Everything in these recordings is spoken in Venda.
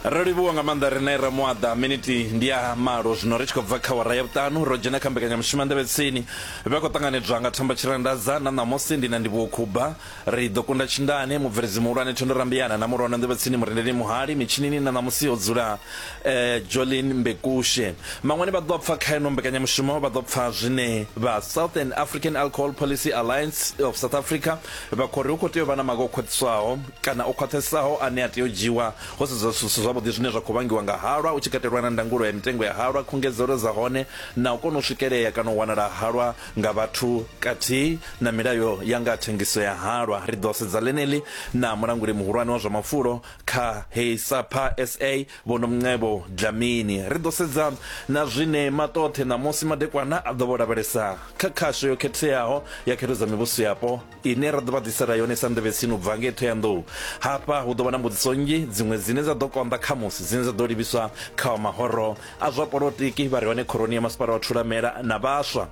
ro livhuwa nga maanḓa rine ra muaḓa miniti ndi ya malo zwino ri tshi khou bva kha wara ya vhuṱanu ro dzhena kha mbekanyamushumo nḓevhetsini vha khou ṱanganedzwa nga thamba tshirandadza na ṋamusi ndi na ndivhuwo khuba ri ḓo kunda tshindane mubveledzi muhulwane thondo rambiyana na mulwana nḓevhetsini murendeli muhali mitshinini na ṋamusi ho dzula eh, jolin mbekushe maṅwani vha ḓo pfa kha ino mbekanyamushumo vha ḓo pfa zwine vha southern african alcohol policy alliance of south africa vha khou ri hu khou tea u vha na maga o khwaṱhiswaho kana o khwaṱhesaho ane a tea u dzhiiwa ho sedzwa zwithu zwi si zwavhuḓi zwine zwa khou vhangiwa nga halwa, hu tshi katelwa na ndangulo ya mitengo ya halwa, khungedzelo dza hone na u kona u swikelea kana u wanala ha halwa nga vhathu kathihi na milayo ya nga ha thengiso ya halwa. Ri ḓo sedza ḽeneḽi na Mulanguli Muhulwane wa zwa Mafulo kha heyi SAPA sa, Vho Nomcebo Dlamini. Ri ḓo sedza na zwine Maṱoṱhe ṋamusi madekwana a ḓo vho lavhelesa kha khasho yo khetheaho ya Khetho dza Mivhusoyapo. ine ra ḓo vha ḓisela yone sa nḓevhe tsini u bva ngei thoyandou hafha hu ḓo vha na mbudziso nnzhi dziṅwe dzine dza ḓo konḓa khamusi dzine dza ḓo livhiswa kha wa mahoro a zwa polotiki vha re hone khoroni ya masipala wa thulamela na vhaswa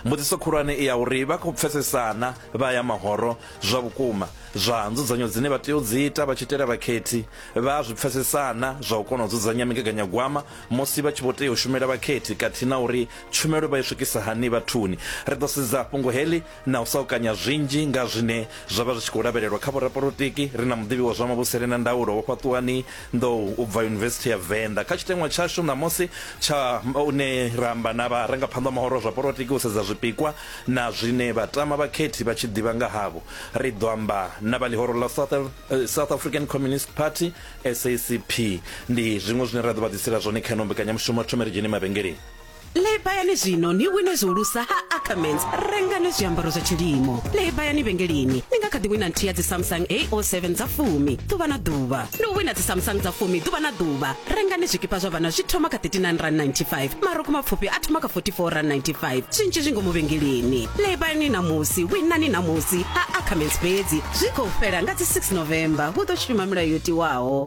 mbudziso khulwane i ya uri vha khou pfesesana vha ya mahoro zwa vhukuma zwa nzudzanyo dzine vha tea u dzi ita vha tshi itela vhakhethi vha zwi pfesesana zwa u kona u dzudzanya migaganyagwama musi vha tshi vho tea u shumela vhakhethi khathihi na uri tshumelo vha i swikisa hani vhathuni ri ḓo sedza fhungo heḽi na u sa u kanya zwinzhi nga zwine zwa vha zwi tshi khou lavhelelwa kha vhorapolotiki, ri na muḓivhi wa zwa mavhusele na ndaulo Vho Fhaṱuwani Nḓou u bva Yunivesithi ya Venḓa. Kha tshiteṅwa tshashu ṋamusi tsha une ra amba na vharangaphanḓa mahoro a zwa polotiki u sedza zwipikwa na zwine vhatama vhakhethi vha tshi ḓivha nga havho, ri ḓo amba na vha ḽihoro ḽa South South African Communist Party, SACP. Ndi zwiṅwe zwine ra ḓo vha ḓisela zwone kha ino mbekanyamushumo. Thome ri dzhene mavhengeleni. Lebayani zwino ni wine zwihulusa ha Ackermans. Rengani zwiambaro zwa tshilimo. Lebayani vhengeleni. Ni nga kha ḓi wina nthihi ya dzi Samsung A07 dza fumi ḓuvha na ḓuvha. Ndi u wina dzi Samsung dza fumi ḓuvha na ḓuvha. Rengani zwikipa zwa vhana zwi thoma kha R39.95. Marukhu mapfufhi a thoma kha R44.95. Zwinzhi zwi ngomu vhengeleni. Lebayani ṋamusi, winani ṋamusi ha Ackermans fhedzi. Zwi khou fhela nga dzi 6 November. Hu ḓo shuma milayo yo tiwaho.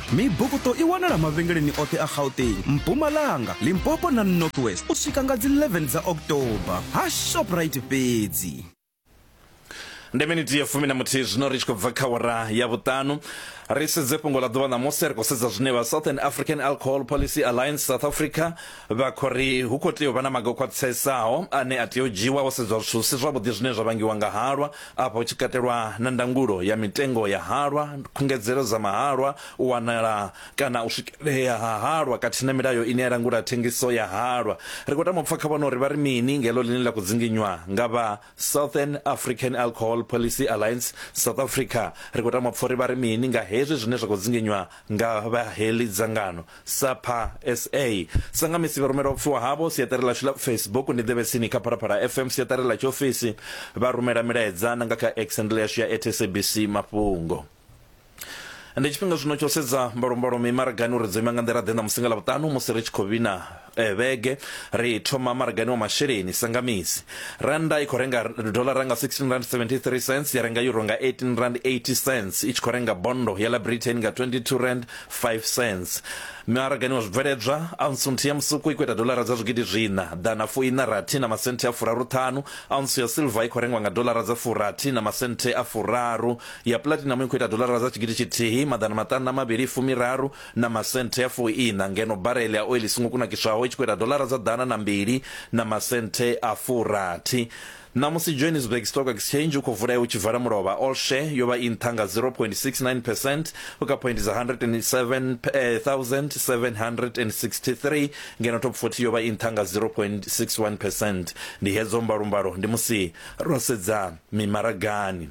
Mibukuṱo i wanala mavhengeleni oṱhe a Gauteng, Mpumalanga, Limpopo na North West u swika nga dzi 11 dza October ha Shoprite fhedzi. Ndi miniti ya fumi na muthihi zwino ri tshi khou bva kha awara ya vhuṱanu. Ri sedze fhungo ḽa ḓuvha ṋamusi, ri khou sedza zwine vha Southern African Alcohol Policy Alliance South Africa vha khou ri hu khou tea u vha na maga o khwaṱhisesaho ane a tea u dzhiwa ho sedzwa zwithu si zwavhuḓi zwine zwa vhangiwa nga halwa, afha hu tshi katelwa na ndangulo ya mitengo ya halwa, khungedzelo dza mahalwa, u wanala kana u swikelea ha halwa khathihi na milayo ine ya langula thengiso ya halwa. Ri khou tama u pfa kha vhone uri vha ri mini nga heḽo ḽine ḽa khou dzinginywa nga vha southern african alcohol policy alliance south africa ri khou tama pfori vha ri mini nga hezwi zwine zwa khou dzinginywa nga vha heḽi dzangano sapa sa sa nga misi vha rumela upfiwa havho siaṱari ḽashu ḽa facebook ndi ḓevhe tsini kha phalaphala fm siaṱari ḽa tshiofisi vha rumela milaedza na nga kha exendl yashu ya atsabc mafhungo ndi tshifhinga zwino tsho sedza mbalombalo mimaragani uri dzo ima nga nḓila ḓe na musi nga ḽavhuṱanu musi ri tshi khou vhina eh, vhege ri thoma maragani wa masheleni sangamisi randa i khou renga dolara nga 16 rand 73 cents ya renga euro nga 18 rand 80 cents i tshi khou renga bondo ya la britain nga 22 rand 5 cents maragani wa zwibveledzwa aunsu nthihi ya musuku i khou ita dolara dza zwigidi zwiṋa ḓana fuiṋa rathi na masenthe a furaru ṱhanu aunsu ya silver i khou rengwa nga dolara dza furathi na masenthe a furaru ya platinum i khou ita dolara dza tshigidi tshithihi maḓana maṱanu na mavhili fumiraru na masenthe a fuiṋa ngeno barele ya oili i songo kunakiswaho i tshi khou ita dolara dza ḓana na mbili na masenthe a furathi Ṋamusi Johannesburg Stock Exchange u khou vulea u tshi vala mulovha all share yo vha i nṱha nga 0.69 percent u kha point dza 107,763 ngeno top 40 yo vha i nṱha nga 0.61 percent ndi hedzo mbalombalo ndi musi ro sedza mimaragani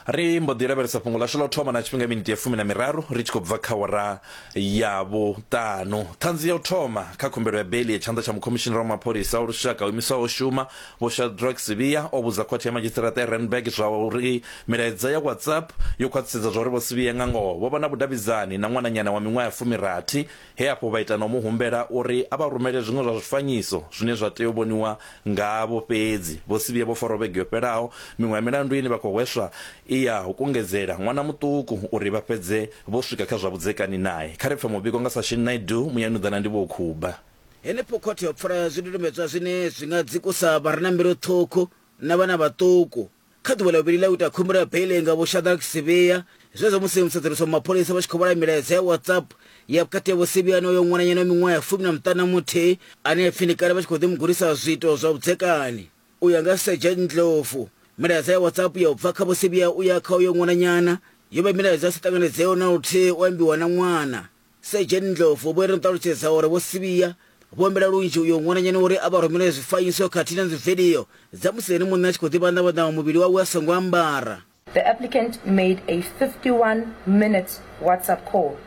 ri mbo ḓi lavhelesa fhungo ḽashu ḽa u thoma na tshifhinga miniti ya fumi na miraru ri tshi khou bva kha wara ya vhuṱanu ṱhanzi ya u thoma kha khumbelo ya beli ya tshanḓa tsha mukhomishinara wa mapholisa wa lushaka o imiswaho shuma vho shadrack sivia o vhudza khothe ya madzhisiṱiraṱa ya randburg zwa uri milaedza ya whatsapp yo khwaṱhisedza zwa uri vho sivia nga ngoho vho vha na vhudavhidzani na ṅwananyana wa miṅwaha ya fumirathi He afho vha ita na u mu humbela uri a vha rumele zwiṅwe zwa zwifanyiso zwine zwa tea u vhoniwa ngavho fhedzi. Vho si vhuye vho farwa vhege yo fhelaho. Miṅwe ya milandu ine vha khou hweswa i ya u kungedzela ṅwana muṱuku uri vha fhedze vho swika kha zwa vhudzekani nae. Kha ri pfe muvhigo nga Sashin Naidoo, Muyanuḓa na Ndivhoukhubha. Henefho khothe yo pfala zwidodombedzwa zwine zwi nga dzikusa vha re na mbilu ṱhukhu na vhana vhaṱuku. Kha ḓuvha ḽa vhuvhili ḽa u ita khumbelo ya beiḽi nga Vho Shadrack Sibiya, zwenezwo musi musedzulusi wa mapholisa vha tshi khou vhala milaedza ya WhatsApp ya vhukati ha Vho Sibiya na uyo ṅwananyana wa miṅwaha ya fumi na muṱanu na muthihi ane a pfi ndi kale vha tshi khou ḓi mu gudisa zwiito zwa vhudzekani. U ya nga Sergeant Ndlovu, milaedza ya WhatsApp ya u bva kha Vho Sibiya u ya kha uyo ṅwananyana yo vha milaedza i sa ṱanganedzeaho na luthihi u ambiwa na ṅwana. Sedzheni Ndlovu vho ri ṱalutshedza uri Vho Sibiya vho humbela lunzhi uyo ṅwananyana uri a vha rumelele zwifanyiso khathihi na dzividio dza musi ene muṋe a tshi khou ḓivhanḓavhanḓa muvhili wawe a songo ambara. The applicant made a 51 minutes WhatsApp call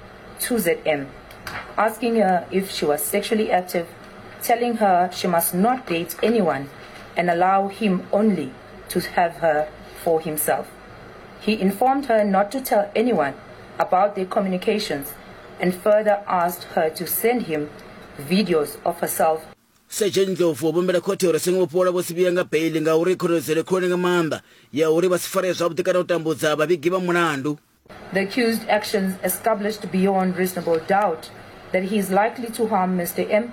to ZM asking her if she was sexually active, telling her she must not date anyone and allow him only to have her for himself. He informed her not to tell anyone about their communications and further asked her to send him videos of herself Sergeant Ndlovu o vhumbela khothe uri songo vhofholola Vho Sibiya nga beiḽi ngauri khonadzeo khulwane nga maanḓa ya uri vha si faree zwavhuḓi kana u tambudza vhavhigi vha mulandu. The accused actions established beyond reasonable doubt that he is likely to harm Mr M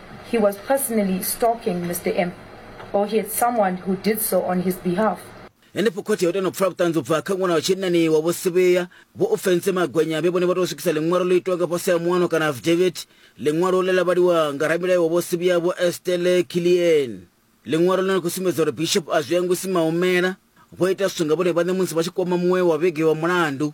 He was personally stalking Mr. M, or he had someone who did so on his behalf. Henefho khothe yo tenda u pfala vhuṱanzi u bva kha ṅwana wa tshinnani wa Vho Sivhuya, Vho Ofentse Magwenya vhe vhone vha tou swikisa ḽiṅwalo ḽo itwaho nga fhasi ha muano kana affidavit. Ḽiṅwalo ḽe ḽa vhaliwa nga ramilayo wa Vho Sivhuya Vho Estelle Killian. Ḽiṅwalo ḽine ḽa khou sumbedza uri Bishop Azwiyangwisi Maumela vho ita zwithu nga vhone vhaṋe musi vha tshi kwama muṅwe wa vhege wa mulandu.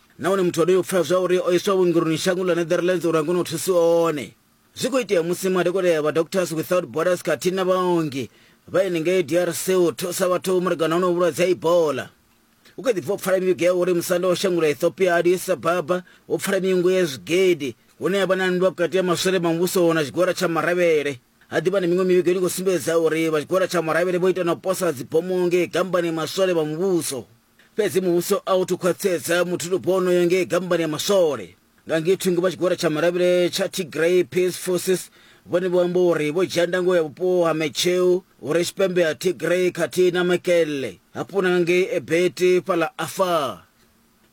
nahone muthu onoyo pfela zwa uri o iswa vhuongeloni shango ḽa netherlands uri a kone u thusi one zwi khou itea musi madokotela ya vha doctors without borders khathihi na vhaongi vha henengei drc u thusa vhathu malugana hono vhulwadze ha ibola hu kha ḓi bva u pfala mivhigo ya uri musanda wa shango ḽa ethiopia addis ababa wo pfala miungo ya zwigidi hune ya vha na nndwa vhukati ha maswole ma muvhuso na tshigwada tsha maravhele ha ḓivha na miṅwe mivhigo ine khou sumbedza uri vha tshigwada tsha maravhele vho ita na u posa dzibomo ngei gambani maswole vha muvhuso fhedzi muvhuso a u thu khwaṱhisedza muthulupo wonoyo ngei gambani ya maswole nga ngei thungo vha tshigwada tsha maravhile tsha tigray peace forces vhone vho amba uri vho dzhia ndango ya vhupo ha mecheu hu re tshipembe ha tigray khathihi na makelle hafhu na nga ngei ebeti fhaḽa afar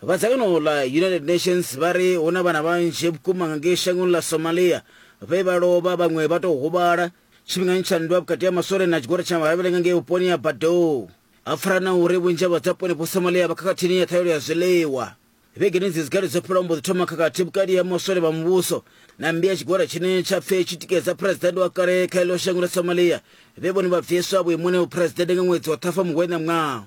vha dzangano ḽa united nations vha ri hu na vhana vhanzhi vhukuma nga ngei shangoni ḽa somalia vhe vha lovha vhaṅwe vha tou huvhala tshifhingani tsha nndwa vhukati ha maswole na tshigwada tsha maravhile nga ngei vhuponi ha badou a fara na uri vhunzhi ha vhadzaponi vho somalia vha khakhathini ya ṱhaelo ya zwiḽiwa vhegeni dzi dzikale dzo fhela mbo ḓi thoma khakhathi vhukati ha maswole vha muvhuso na mmbi ya tshigwada tshine tsha pfe tshi tikedza phuresidennde wa kale kha ilo shango ḽa somalia vhe vhone vha bviswa vhuimoni ha vhuphuresidennde nga ṅwedzi wa ṱhafa muhwena ṅwaha